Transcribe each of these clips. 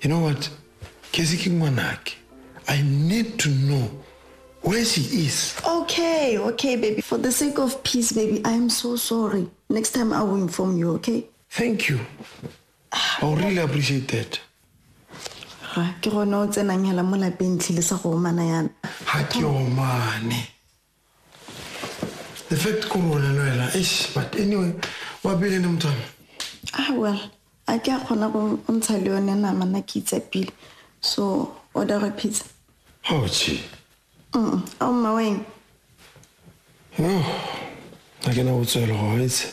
You know what? Kezi ke ngwanake. I need to know where she is. Okay, okay, baby. For the sake of peace, baby, I am so sorry. Next time I will inform you, okay? Thank you. I really appreciate that. Ra, ke gone o tsenang hela mo lapeng tlhile sa go omana yana. Ha ke omane. The fact korona no ela eish but anyway wa pele ne motho ah well a ke a kgona go ntsha le yone nama na ke itsapile so order a pizza oh chi mm a o mma weng no a ke na go tswela go itse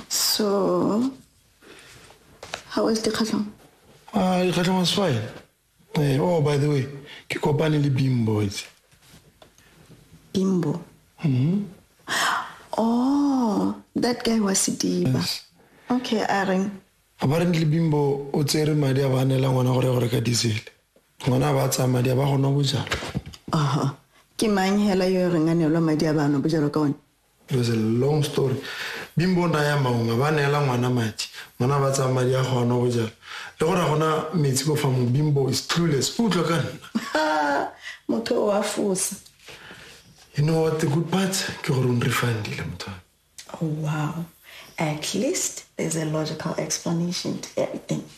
so how is the khatlong ah dikhatlong is fine Eh, oh, by the way, ke kopane le Bimbo itse. Bimbo. Mhm. Oh, that guy was Sidiba. Yes. Okay, a reng. Apparently Bimbo o tsere madi a ba nela ngwana gore gore ka diesel. Ngwana ba tsaya madi a ba gona bojalo. Aha. Ke mang hela yo reng a nelwa madi a ba no bojalo ka one? It was a long story. Bimbo nna ya maunga ba neela ngwana madi, ngwana ba tsaya madi a go a nwa bojalo. Le gore a gona metsi ko fa mo Bimbo is clueless. O utlwa ka nna. Motho o a fosa. You know what the good part? Ke gore o nrefundile motho wa. Oh wow. At least there's a logical explanation to everything.